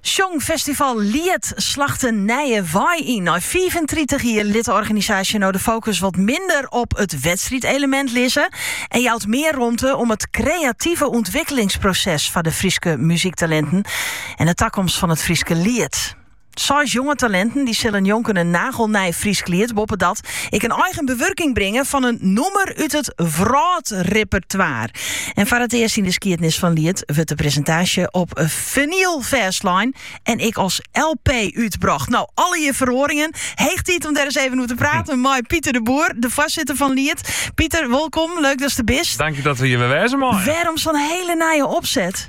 Sjongfestival Liet slacht in nije wei yn. Nei 35 jier lit de organisaasje nou de focus wat minder op it wedstriedelemint lizze en jout mear romte om it kreative ûntwikkelingsproses foar de Fryske muzyktalinten en de takomst fan it Fryske liet. Seis jonge talinten dy sille njonken in nagelnij Frysk liet, boppedat ek in eigen bewurking bringe fan in nûmer út it wrâldrepertoire. En foar it earst yn de skiednis fan Liet wurdt de presintaasje op vinyl fêstlein en ek as LP útbrocht. No, allegear feroaringen. Heech tiid om der ris even oer te praten mei Pieter de Boer, de foarsitter fan Liet. Pieter, wolkom, leuk datst der bist. Dank dat we hjir wer wêze meie. Wêrom sa'n hiele nije opset?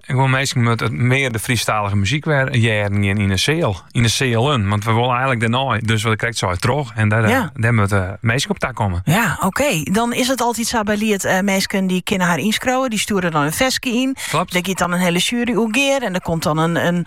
Gewoan, minsken moatte mear de Frysktalige muzyk wer hearren gean yn de seal. Yn de sealen. Want we wolle eigenlik dêrnei. Dus wat ik krekt sei, troch. En dêr, eh, ja, dêr moatte eh, minsken op ta komme. Ja, oké. Dan is it altyd sa by Liet. Uh, eh, minsken dy kinne har ynskriuwe. Dy stjoere dan in ferske yn. Klopt. Dêr giet dan in hiele sjuery oer gear. En der komt dan in, in,